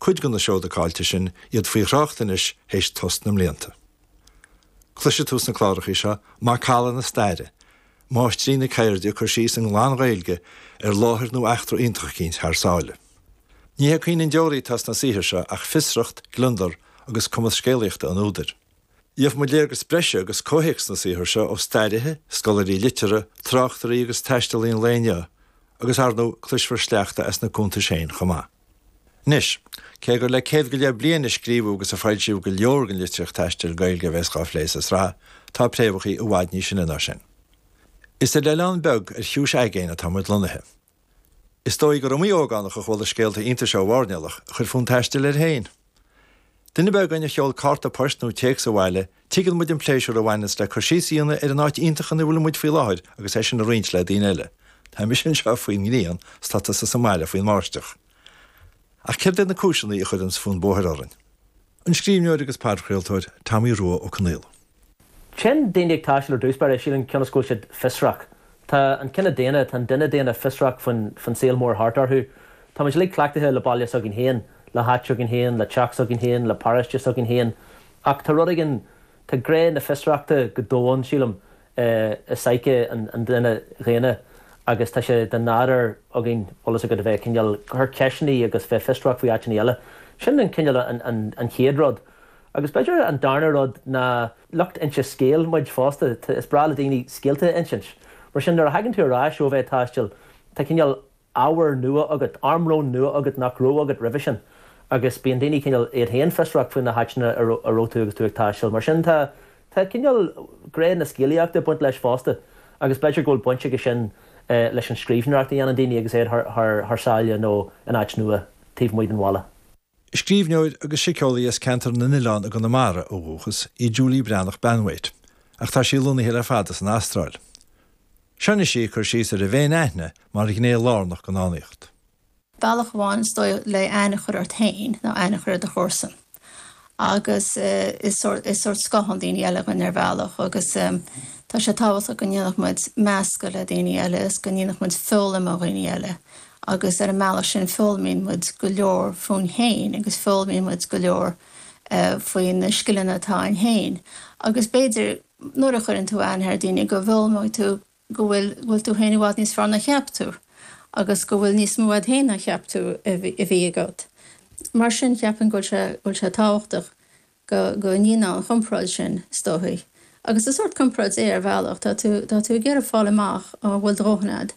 Cuid de na seoda caillte sin, iad faoi thrácht anois théis tost na mblianta. Cloisfidh tú sna clárachaí seo macalla na staire, máistrí na ceirde ag cur síos i nglan-Ghaeilge ar láthair nó eachtra iontach eicínt thar sáile. Ní hé caoineadh an deoraí atá sna saothair seo ach fiosracht, gliondar agus cumas scéalaíochta an údair. Gheofamid léargas breise agus comhthéacs na saothar seo ó stairithe, scoláirí liteartha, tráchtairí agus taistealaí an lae inniu agus, ar ndóigh, cloisfear sleachta as na cuntais féin chomh maith. Anois, cé gur le céad go leith bliain a scríobhadh agus a foilsíodh go leor den litríocht taistil Ghaeilge a bheas dhá phlé sa sraith, tá préamhachaí i bhfad níos sine ná sin. Is ar oileán beag ar chiumhais aigéin atá muid lonnaithe. Is dóigh gur iomaí ógánach a chuala scéalta iontais ó mhairnéalach a chuir fonn taistil air féin. Duine ar bith againn a sheol cárta poist nó téacs abhaile, tuigeann muid an pléisiúr a bhaineanns le cur síos a dhéanamh ar an áit iontach ina bhfuil muid faoi láthair agus é sin a roinnt le daoine eile. Tá mise anseo faoin ngrian, is tá tusa sa mbaile faoin mbáisteach. Ach céard iad na cúiseanna a chuireanns fonn bóthair orainn? An scríbhneoir agus podchraoltóir Tomaí Rua Ó Conghaile. Téann daoine ag taisteal ar dtús báire, sílim, cionn is go bhfuil siad fiosrach. Tá an cine daonna, tá an duine daonna fiosrach faoin saol mór thart orthu. Táimid uilig cleachtaithe le baile s'againn féin, le háit s'againn féin, le teach s'againn féin, le paróiste s'againn féin. Ach tá rud éigin, tá gné na fiosrachta go domhain, sílim, i psyche an duine dhaonna agus tá sé de nádur againn, eolas agat, a bheith ag cineál, ag cur ceisteannaí agus bheith fiosrach faoi áiteannaí eile. Sin an cineál, an chéad rud. Agus b'fhéidir an darna rud ná lucht inse scéil muid fosta, is breá le daoine scéalta a insint. Mar sin, nuair a thagann tú ar ais ó a bheith ag taisteal, tá cineál ábhar nua agat, armlón nua agat nach raibh agat roimhe sin. Agus bíonn daoine cineál iad féin fiosrach faoi na háiteanna a raibh tú agus tú ag taisteal. Mar sin, tá cineál gné na scéalaíochta ag baint leis fosta. Agus b'fhéidir go bhfuil baint aige sin leis an scríbhneoireacht a dhéanann daoine agus iad thar sáile nó in áit nua taobh amuigh den bhaile. Scríbhneoir agus síceolaí as Ceantar na nOileán i gConamara ó dhúchas í Julie Breathnach-Banwait ach tá sí lonnaithe le fada san Astráil. Seo anois í ag cur síos ar an bhféin-aithne mar ghné lárnach den fhánaíocht. Bealach amháin, is dóigh le aithne a chur ort féin ná aithne a chur ar do chomharsan agus is sórt scáthán daoine eile dúinn ar bhealach agus tá sé tábhachtach go ndéanfadh muid meascadh le daoine eile is go ndéanfadh muid foghlaim ó dhaoine eile Agus ar an mbealach sin foghlaimíonn muid go leor fúinn féin agus foghlaimíonn muid go leor faoi na scileanna atá a'inn féin. Agus b'fhéidir nuair a chuireann tú aithne ar dhaoine go bhfoghlaimeoidh tú go bhfuil, bhfuil tú féin i bhfad níos fearr ná a cheap tú agus go bhfuil níos mó a'd féin ná a cheap tú a bhí agat. Mar sin cheapfainn go bhfuil sé tábhachtach. Go ndéanann an chomparáid sin, is dóichí. Agus is sórt comparáid é, ar bhealach. Tá tú, tá tú ag iarraidh fáil amach an bhfuil do dhóthain agat,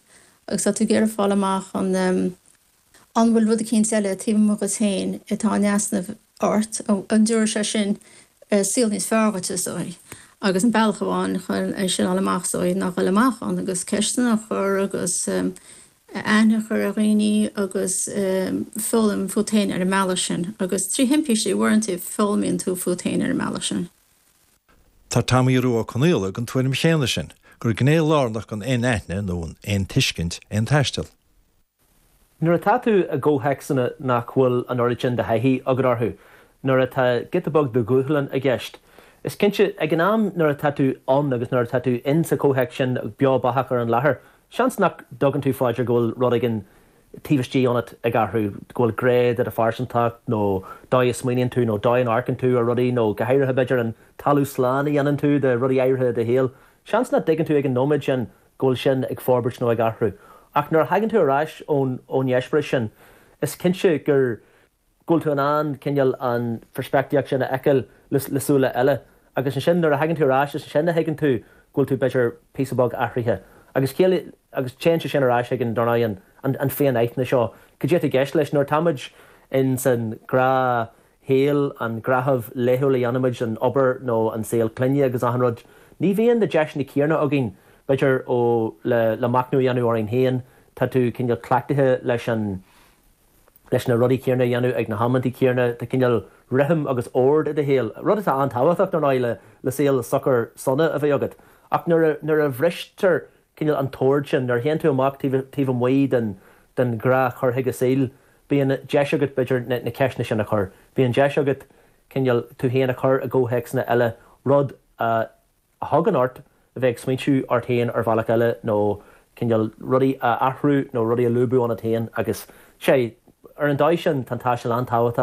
agus tá tú ag iarraidh fáil amach an, an bhfuil rud eicínt eile taobh amuigh dhuit féin atá in easnamh ort, an dtabharfaidh sé sin saol níos fearr dhuit, is dóichí. Agus an bealach amháin é sin a fháil amach, is dóichí, ná a dhul amach ann agus ceisteanna a chur agus, a aithne a chur ar dhaoine agus foghlaim fút féin ar an mbealach sin. Agus trí thimpistí uaireanta foghlaimíonn tú fút féin ar an mbealach sin. Tá Tomaí Rua Ó Conaola den tuairim chéanna sin, gur gné lárnach den fhéin-aithne nó an fhéin-tuiscint é an taisteal. Nuair atá tú i gcomhthéacsanna nach bhfuil an oiread sin de thaithí agat orthu, nuair atá giota beag de dhúshlán i gceist, is cinnte, ag an am nuair atá tú ann agus nuair atá tú in sa chomhthéacs sin, beo beathach ar an láthair, Seans nach dtugann tú faoi deara go bhfuil rud éigin taobh istigh ionat ag athrú, go bhfuil gné de do phearsantacht, nó dóigh a smaoiníonn tú, nó dóigh a n-amharcann tú ar rudaí, nó go háirithe, b'fhéidir, an talamh slán a dhéanann tú de rudaí áirithe i do shaol. Seans nach dtuigeann tú ag an nóiméad sin go bhfuil sin ag forbairt nó ag athrú. Ach nuair a thagann tú ar ais ón eispéireas sin, is cinnte gur go bhfuil tú in ann cineál an pheirspictíocht sin a fheiceáil le súile eile agus ansin nuair a thagann tú ar ais is ansin a thuigeann tú go bhfuil tú b'fhéidir píosa beag athraithe agus is cóir agus téann sé sin ar ais chuig an, dar ndóigh, an, an fhéin-aithne seo cad é atá i gceist leis nuair atáimid in san ghnáthshaol an gnáthamh laethúil a dhéanaimid an obair nó an saol clainne agus achan rud ní bhíonn na deiseanna céanna againn b'fhéidir ó le le machnamh a dhéanamh orainn féin tá tú cineál cleachtaithe leis an leis na rudaí céanna a dhéanamh ag na hamanntaí céanna. Tá cineál rithim agus ord i do shaol, rud atá an-tábhachtach, dar ndóigh, le saol socair sona a bheith agat. Ach nuair a bhristear cineál an t-ord sin, nuair a théann tú amach taobh amuigh den ghnáthchur chuige saoil, bíonn deis agat, b'fhéidir, na ceisteanna sin a chur. Bíonn deis agat cineál tú féin a chur i gcomhthéacsanna eile, rud a. a thugann ort a bheith ag smaointiú ort féin ar bhealach eile nó cineál rudaí a athrú nó rudaí a lúbadh ionat féin agus, sé, ar an dóigh sin tá an taisteal an-tábhachtach.